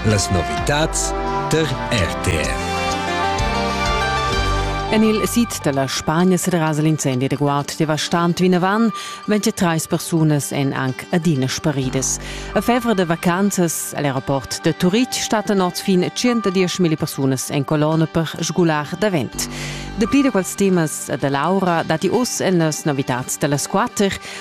Las novitads der RTR. En il sid da la Spagna serrasa l'incendi reguard devastant vinavant. 23 persunas èn anc adina sparidas. A fevra da vacanzas all'aeroport de Turitg stattan oz fin 110.000 persunas en colonna per sgular davent. Dapli da quels temas da Laura datti oz en las novitads da las quatter.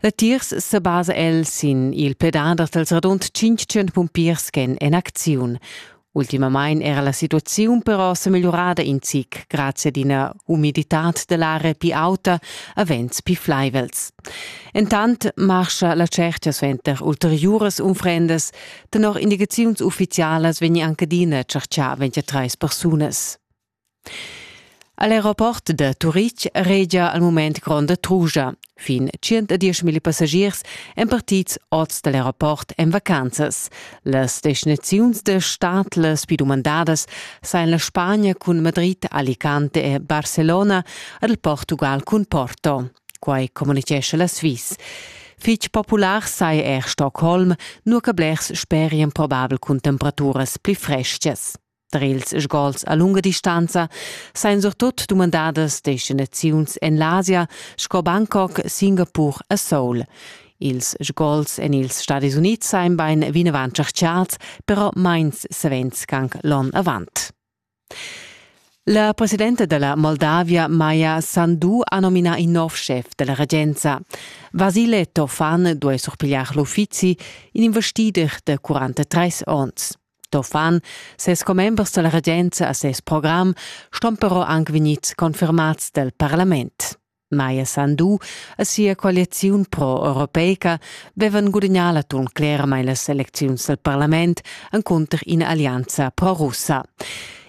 Latiers sebasa el sin il pedader dals radund 500 pumpiers ch'èn en acziun. Ultimamain era la situaziun però sa migliurada in zic grazie ad ina umiditad da l'aria pli auta a vents pli flaivels. Entant marscha la cerchia suenter ulteriuras unfrendas. Tenor indicaziuns uffizialas vegni anche adina tschertgà 23 persunas. A l'aeroport da Turitg regia al mument gronda trugia. Fin 110.000 passagiers èn partids oz da l'aeroport en vacanzas. Las destinaziuns da stad las pli dumandadas sain la Spagna cun Madrid, Alicante e Barcelona ed il Portugal cun Porto. Quai communitgescha la Sviss. Fitg popular sai er Stockholm, nua che blers sperian probabel cun temperaturas pli freschas. Tar ils sgols a lunga distanza sain surtut dumandadas destinaziuns en l'Asia sco Bangkok, Singapur e Seoul. Ils sgols en ils Stadis Unids sain bain vinavant tscherchats, però mains savens anc l'on avant. La presidenta della Moldavia, Maja Sandu, ha nominà in nov chef della regenza. Vasile Tofan duai surpigliar l'uffizi, in investider de 43 onns. Tofan, ses commembers dalla regenza a ses program ston però anc vegnits confirmats dal parlament. Maja Sandu e sia coaliziun pro-europeica vevan gudagnà l'atun cleramain las elecziuns dal parlament encunter ina allianza pro-russa.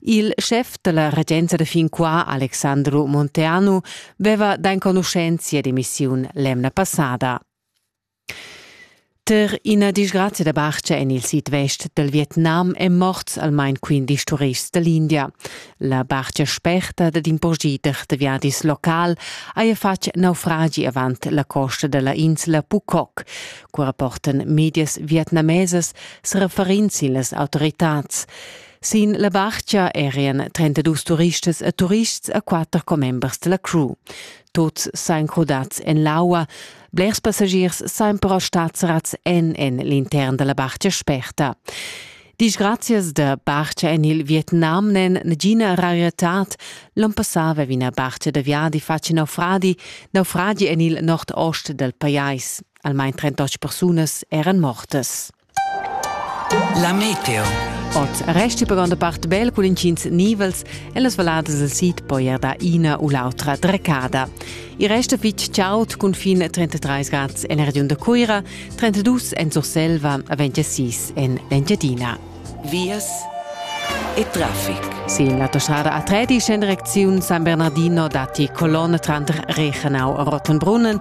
Il schef della regenza da fin qua, Alexandru Monteanu, veva d'enconuschenza ed emissiun l'emna passada. Ter ina disgrazia da barcha en il sidvest dal Vietnam èn morts almain quindesch turists da l'India. La barcha sperta dad in purschiter da viadis local haja fatg naufragi avant la costa da la insla Phuket, cura portan medias vietnamesas referents sin las autoritads. Sin la barcha erian 32 turistas e turists e quatter commembers da la crew. Tuts sain crudats en l'aua, blers passagiers sain però stats rats en en l'intern da la barcha sperta. Disgrazias da barcha en il Vietnam n'en nagina rarietad. L'on passà aveva ina barcha da viadi fatg naufragi, naufragi en il nord-ost dal pajais. Almain 38 persunas eran mortas. La meteo. Ot resti per granda part bel cun incins nivels e las valadas del sid poi er da ina u l'autra drecada. I resta fitg chaud cun fin 33 grad en la regiun da Cuira, 32 en Surselva, 26 en l'Engiadina. Vias e traffic. Sin l'autostrada A3 scende direcziun San Bernardino dati colonne tranter Reichenau e Rottenbrunnen,